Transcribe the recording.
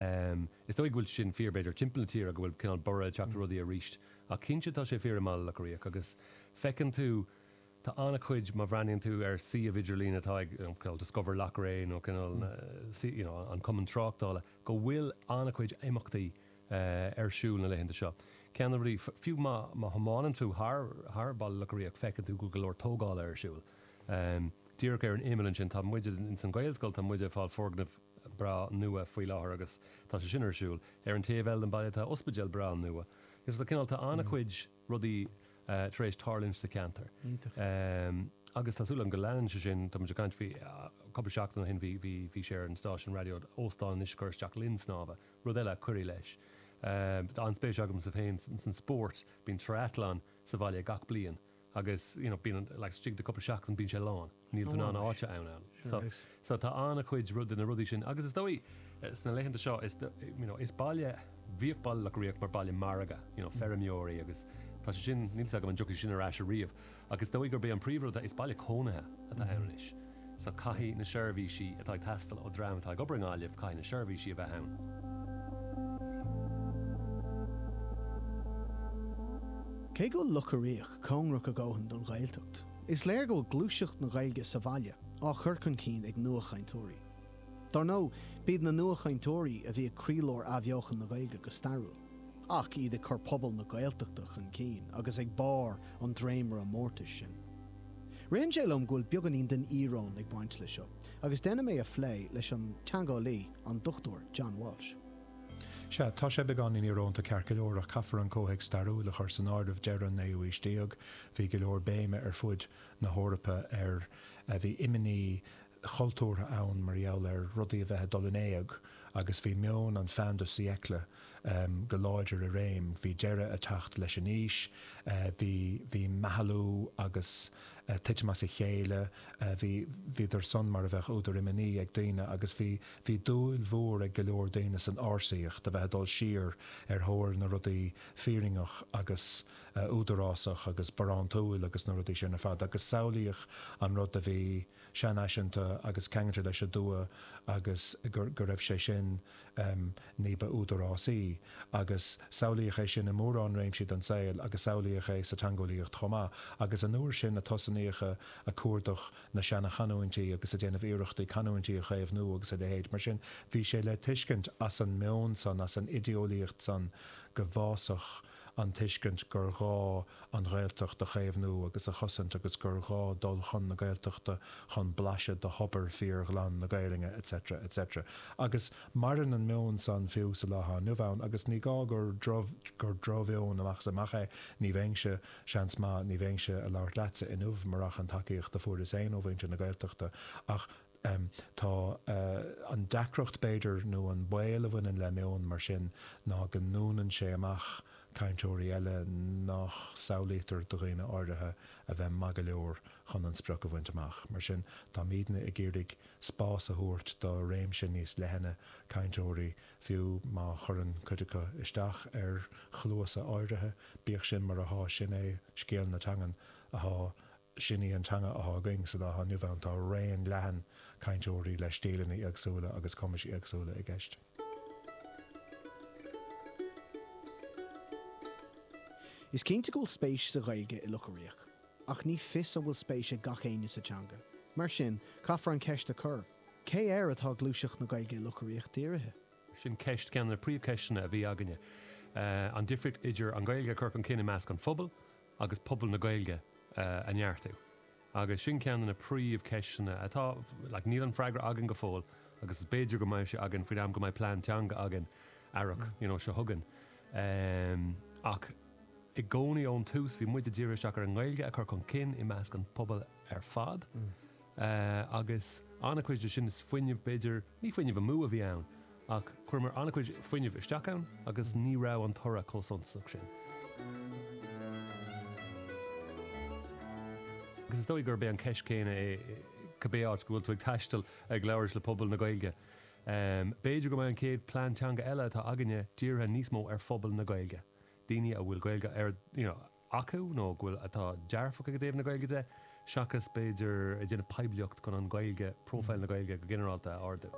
Is dóigh go bhfuil sin fíor, b'fhéidir, timpeall na tíre, go bhfuil cineál borradh ag teacht ar rudaí arís, ach cinnte tá sé fíor i mBaile Locha Riach agus feiceann tú, tá an-chuid, má bhreathnaíonn tú ar an suíomh idirlín atá ag, cineál Discover Loughrea nó cineál you know an Cumann Tráchtála, go bhfuil an-chuid imeachtaí ar siúl na laethanta seo. Ceann de na rudaí, fiú má thiomáineann tú thar, thar Baile Locha Riach, feiceann tú go bhfuil go leor tógála ar siúl. Díreach ar an imeall ansin, tá muide ins an Ghaelscoil, tá muide ag fáil foirgneamh, breá nua faoi láthair agus tá sé sin ar siúl. Ar an taobh eile den baile tá ospidéal breá nua. So cineál, tá an-chuid rudaí tar éis tarlúint sa cheantar. Iontach. Agus tá súil agam go leanann sé sin, tá muid ag caint faoi, cúpla seachtain ó shin bhí, bhí, bhí sé ar an stáisiún raidió, óstán anois ag cur isteach linn snámha, rud eile a chuirfeadh leis. Tá an-spéis agamsa féin san spórt, bíonn triathlon sa bhaile gach bliain. agus you know bíonn like taobh istigh de cúpla seachtain bíonn sé lán. Níl tú in ann áit a fháil ann. Sure So is. so tá an-chuid de na rudaí sin agus is dóigh sna laethanta seo is you know is baile bhíodh Baile Locha Riach mar baile margaidh you know feirmeoirí agus tá sé sin níl a fhios agam an dtiocfaidh sé sin ar ais ariamh ach is dóigh gurb é an príomhrud atá is baile cónaithe atá ann anois. so caithfidh na seirbhísí atá ag teastáil ó dhream atá ag obair i nGaillimh, caithfidh na seirbhísí a bheith ann. Cé go bhfuil Locha Riach cóngarach a dhóthain don Ghaeltacht, is léir go bhfuil gluaiseacht na Gaeilge sa bhaile á chur chun cinn ag nuachainteoirí. Dar ndóigh, b'iad na nuachainteoirí a bhí ag croílár athbheochan na Gaeilge go stairiúil, ach iad ag cur pobal na Gaeltachta chun cinn agus ag barr an dréimire mórtais sin. Ritheann sé liom go bhfuil beagáinín den íoróin ag baint leis seo, agus déanaim é a phlé leis an teangeolaí, an Dr John Walsh. Sea, tá sé beagáinín íorónta ceart go leor, ach caithfear an comhthéacs stairiúil a chur san áireamh, deireadh an naoú haois déag, bhí go leor béime ar fud na hEorpa ar, bhí imní, chultúrtha ann mar gheall ar rudaí a bheith ag dul in éag agus bhí meon an fin de siècle go láidir i réim, bhí deireadh ag teacht leis an aois, bhí meathlú agus titim as a chéile, bhíodar san mar a bheadh údar imní ag daoine agus bhí dúil mhór ag go leor daoine san ársaíocht, a bheith ag dul siar ar thóir na rudaí fírinneacha agus údarásacha agus barántúla agus na rudaí sin ar fad agus samhlaíodh an rud a bhí seanfhaiseanta agus ceangailte leis an dtuath agus go raibh sé sin ní ba údarásaí agus samhlaíodh é sin i mórán réimsí den saol agus samhlaíodh é sa teangeolaíocht chomh maith agus an uair sin a tosnaíodh ag cuardach na seanachanúintí agus ag déanamh iarrachtaí canúintí a chaomhnú agus a leithéid. Mar sin bhí sé le tuiscint as an meon san, as an idéolaíocht san go bhfásfadh. an tuiscint gur ghá an Ghaeltacht a chaomhnú agus a chosaint agus gur ghá dul chun na Gaeltachta chun blaiseadh de thobar fíor-ghlan na Gaelainne etc. etc. Agus maireann an meon san fiú sa lá athá inniu ann agus ní gá gur drochmheon amach is amach é, ní bheinnse, seans maith, ní bheinnse a' labhairt leatsa inniu murach an tacaíocht a fuaireas féin ó mhuintir na Gaeltachta ach em. tá eh. an deacracht b'fhéidir nó an baol a bhaineann le meon mar sin ná go ndúnann sé amach cainteoirí eile nach samhlaítear do dhaoine áirithe a bheith maith go leor chun an sprioc a bhaint amach. Mar sin, táimidne ag iarraidh spás a thabhairt do réimse níos leithne cainteoirí, fiú má chuireann cuid acu isteach ar chluasa áirithe, bíodh sin mar athá, sin é scéal na teangan, athá, Sin í an teanga athá againn sa lá athá inniu ann. Tá raon leathan cainteoirí le stíleanna éagsúla agus cumais éagsúla i gceist. Is cinnte go bhfuil spéis sa Ghaeilge i Loch Riach, ach ní fios an bhfuil spéis ag gach éinne sa teanga. Mar sin, caithfear an cheist a chur, cé air atá gluaiseacht na Gaeilge i Loch Riach dírithe? Sin ceist, ceann de na príomhcheisteanna a bhí againne. An difríocht idir an Ghaeilge a chur chun cinn i measc an phobail, agus pobal na Gaeilge a neartú. Agus sin ceann de na príomhcheisteanna atá, like, níl an freagra againn go fóill agus is b'fhéidir go mbeidh sé againn faoin am go mbeidh plean teanga againn, earrach, you know, seo chugainn. Ehm, ach i gcónaí ón tús bhí muid a' díriú isteach ar an nGaeilge a chur chun cinn i measc an pobal ar fad. Eh, agus an-chuid de sin is fuinneamh, b'fhéidir, ní fuinneamh amú a bhí ann ach chuireamar an-chuid fuinnimh isteach ann agus ní raibh an toradh chomh suntasach sin. Agus is dóigh gurb é an cheist chéanna é cibé áit go bhfuil tú ag taisteal ag labhairt le pobal na Gaeilge. Em, b'fhéidir go mbeidh an chéad plean teanga eile atá againne dírithe níos mó ar phobal na Gaeilge, daoine a bhfuil Gaeilge ar, you know, acu, nó go bhfuil atá dearfach ag i dtaobh na Gaeilge de, seachas, b'fhéidir, ag déanamh poiblíocht chun an Ghaeilge, profile na Gaeilge go ginearálta, a ardú.